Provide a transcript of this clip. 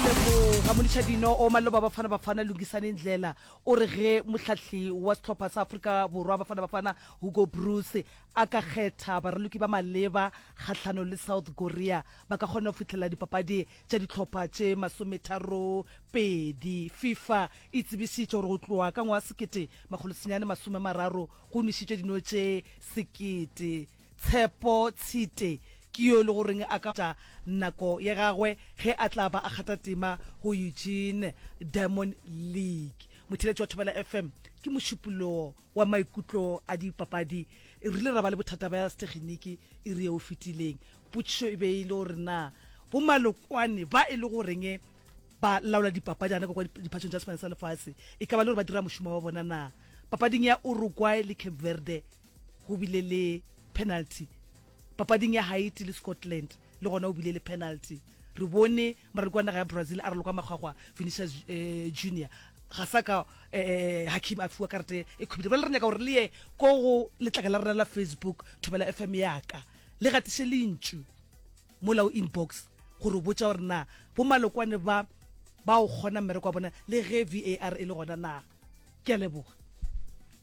Leboga Molišadino o maloba Bafana Bafana Lungisani Ndlela o re ge mohlahli wa sehlopha sa Afrika Borwa Bafana Bafana Hugo Broos a ka kgetha baraloki ba maleba kgahlanong le South Korea ba ka kgona go fihlelela dipapadi tša dihlopha tše masometharopedi. Fifa e tsebišitše gore go tloga ka ngwaga sekete makgolo senyane masome mararo go nwešitšwe dino tše sekete Tshepo Tshite ke yo e le goreng a ka tša nako ya gagwe ge a tla ba a kgatha tema go Eugene Diamond League. Motheeletši wa Thobela FM ke mošupollo wa maikutlo a dipapadi. Re rile ra ba le bothata bja seteginiki iri yeo e fetileng. Potšišo e be e le gore na bo Malokwane ba e le goreng ba laola dipapadi gana kwa kwa diphatšong tša Sefane sa Lefase e ka ba le gore ba dira mošomo wa bona na papading ya Uruguay le Cape Verde? Go bile le penalty papading ya Haiti le Scotland, le gona go bile le penalty. Re bone moraloki wa naga ya Brazil a raloka makgwakgwa Vinicius eh, Junior ga sa ka eh, eh, Hakim a fiwa karate e khubile. Ba le re nyaka gore le ye ko go letlaka la rena la Facebook Thobela FM yaka le gatiše lentšu mola o inbox gore o botša gore na bomalokwane ba ba o kgona mmereko wa bona le ge VAR e le gona na. Ke a leboga.